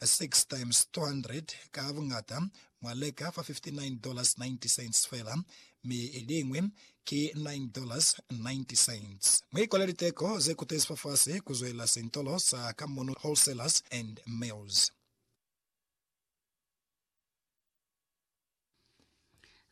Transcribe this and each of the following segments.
6 times 200 ka buñata, mwa leka fa $59.90 fela, mi liñwi ki $9.90. Mu ikole liteko ze kutezi fafasi ku zwelela sintolo sa Kamunu Wholesalers and Mills.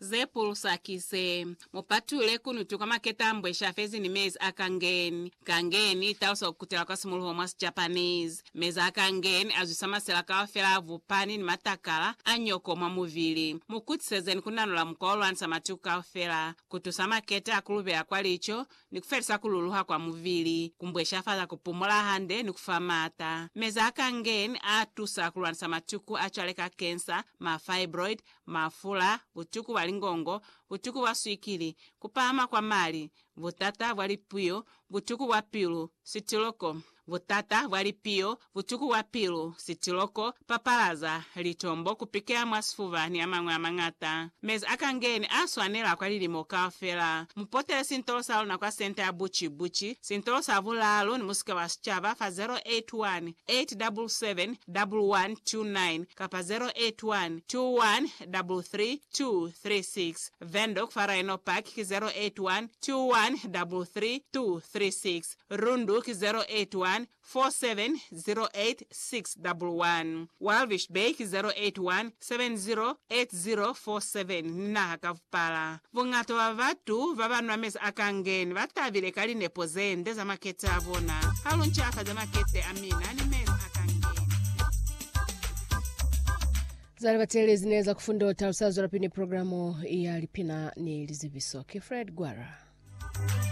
Ze pulusa ki ze, Mu patule ku nutu kwa maketa a mbweshi a fezi ni mezi a kangen. Kangen i talusa ku kutela kwa simuluho mwa Sijapanese. Mezi a kangen a zwisa masela kaufela a vupani ni matakala a nyoko mwa mubili. Mu kutisezeni ku nanula mukwa wo lwanisa matuku kaufela, ku tusa maketa a ku lubela kwa lico, ni ku felisa ku luluha kwa mubili, ku mbweshafala ku pumola hande, ni ku fa maata. Meza a Kangen a tusa ku lwanisa matuku a cwale ka kensa, ma fibroid, mafula, butuku bwa lingongo, butuku bwa swikili, ku pahama kwa mali, butata bwa lipuyo, butuku bwa pilu, sitiloko, Butata bwa lipiyo, butuku bwa pilu, sitiloko, papalaza, litombo, ku pikela mwa sifuba ni amañwi amañata. Mezi a kangeni a swanela kwa lilimo kaufela. Mu potele sintolo sa luna kwa Senta ya Buci Buci, sintolo sa bulaalu ni musika wa sicaba fa 0818771129 kapa 0812133236. Windhoek fa Rhino Park ki 0812133236. Rundu ki 0814708611, Walvis Bay ki 08170807 ni naha ka vupala. Buñata bwa batu baba nwa mezi a kangeni ba tabile ka linepo ze nde za makete a bona. Ha lu ncafaze makete a mina ni mezi a kangeni. Za libateli zine za kufunda u talusa zwelapili ni programu ya lipina ni lizibiso. Ki Fred Gwara.